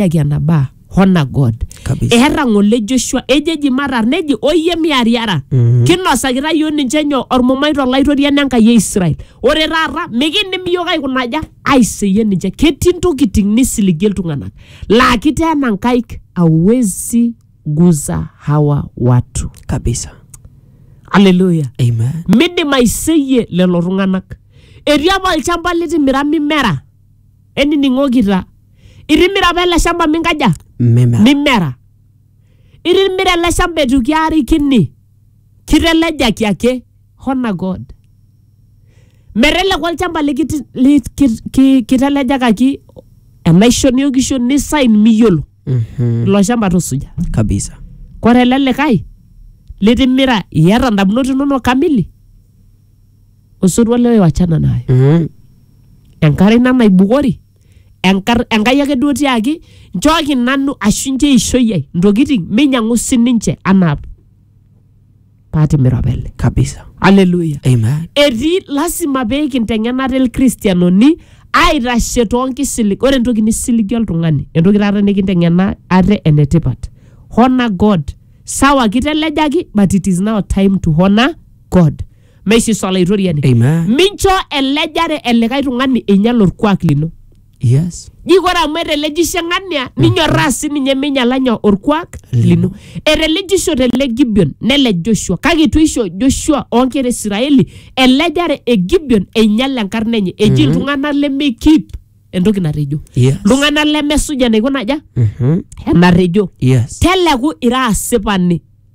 yaki ena baa hona god Kabisa. eherra ng'ole joshua ejo eji matar neji oyie miariara Mhm. kinosakita yiok ninche nyoo ormumai tolaitoriani enkai e israel ore taata mikindim yiok aikunaja aiseyie ninche ketii ntokiting nisiligie iltung'anak laa kiteena nkaik awezi guza hawa watu kabisa aleluya amen midim aiseyie lelo tung'anak etii apa olchamba litimira mimera enining'okita itimira apa ele shamba minkaja meme mimera itimira ele shamba etu kiarikini kitelejaki ake hona god meteleku olchamba likiti- li- ki- ki- kitelejakaki enaisho niokisho nisain miyiolo Mhm, ilo shamba tusuja kabisa kore ele likae litimira iyata ndamunot inonok kamili osotua lewe wachana naye Mm. enkare ina naibukori enkar- enkai ake duo tiaki nchooki nanu ashu nche eishoi ai ntokitin meinyang'u sininche anaa paatimira opele kabisa aleluya amen etii lasima pee kinteng'ena te lkristianoni aitashe toonkisilig ore entoki nisiligi oltung'ani entoki taata nikinteng'ena ate enetipat honor god sawa kitelejaki but it is now time to honor god meisisa olaitoriani Amen. mincho elejare elikae tung'ani einyal orkuak lino Yes. ji kore amu etelejishe ng'ania ninyorraa sininye meinyala nyoo orkuak lino etelejishote ele gibeon nelej joshua kake itu isho joshua oonkera isiraeli elejare e gibeon einyal enkarna enye eji iltung'anak lemeikip entoki natejo Yes. iltung'anak lemesuj enaiko naja Mhm. enatejo Yes. teleku ira asipani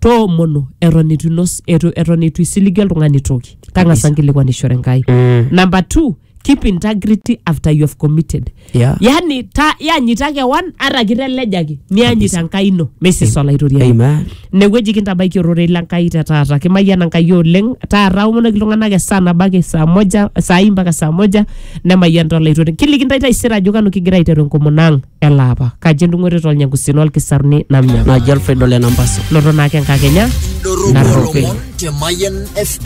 toomonu eton itu inos etu- eton itu isiligi oltung'ani toki tang'asa nkilikuanishore enkai Mm. number two keep integrity after you have committed Yeah. yani ta yanyita kewan ata kitelejaki niyanyit enkai ino mesis olaitoriani Amen. inewueji kintabaiki ororei lenkai te taata kimayiana enkai oleng taata omonoki iltung'anak esaa nabo ake saa moja saai mpaka saa moja nemayianita olaitoriani kiliki ntae taisere ajo kanu kigira aiteru enkomono ang elaapa kaji endung'oto tolnyangusin olkisaruni namnya naji alfredo lenambaso loto naake enkakenya Kidorropu Narropil. ilomon te Mayian FM.